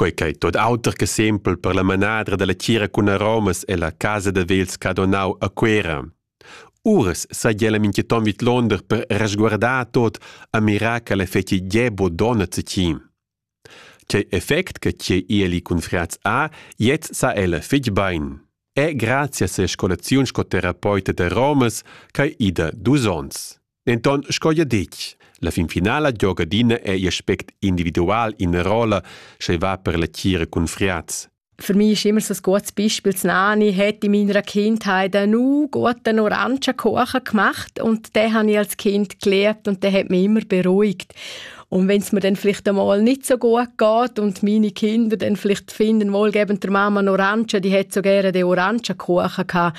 Quei ch'ei tot auter che sempel per la manadra dalla tgira cun aromas ella casa da vels Cadonau a Cuera. Uras sai ella mincheton vidlonder per resguardar tot a mirar che l'effecti Gebo donna zecin. Cei effect che tgei ieli cun friaz a, jetzt sa ella fitg bein. È grazie a se scolaziun sco terapeuta da Romas ch'ei ida dus ons. Denton sco jeu detg, la fin finala gioga adina ei aspect individual ina rolla, sche va per la tgira cun friaz. Für mich ist immer so ein gutes Beispiel, das Nani hat in meiner Kindheit einen guten Orangenkuchen gemacht und den habe ich als Kind gelernt und der hat mich immer beruhigt. Und wenn es mir dann vielleicht einmal nicht so gut geht und meine Kinder dann vielleicht finden, wohlgebend der Mama einen Orangen, die hat so gerne den Orangenkuchen gehabt,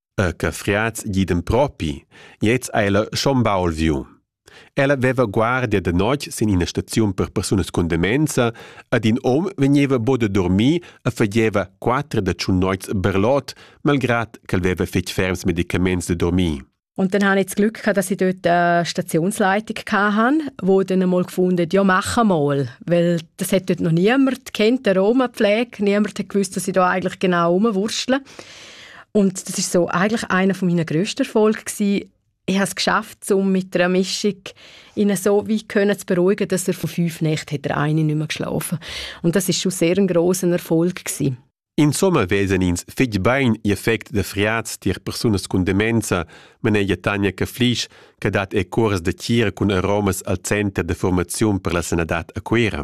E che friats gidem propi, gliez ha ella schon baul viu. Ella veva guardia de notg sin ina staziun per persunas cun demenza ed in hom vegneva bo de dormir e fageva quater da tschun noits berlot, malgrad ch'el veva fetg ferms medicaments de dormir. Und dann habe ich das Glück gehabt, dass ich dort eine Stationsleitung hatte, wo dann einmal gefunden ja, machen mal. Weil das hat dort noch niemand kennt, die Roma-Pflege. Niemand hat gewusst, dass ich da eigentlich genau rumwurstle. Und das ist so eigentlich einer von meinen grössten Erfolgen gewesen. Ich habe es geschafft, um mit einer Mischung ihn so weit können zu beruhigen, dass er von fünf Nächten hat er eine nicht mehr geschlafen. Und das ist schon sehr ein grosser Erfolg gewesen. In Sommer wesen ins fitg bein ihr effect de friaz tier persunas cun demenza, manegia Tanja Caflisch, che dat e curs de tira cun aromas al center de formaziun per la sanadad a Cuera.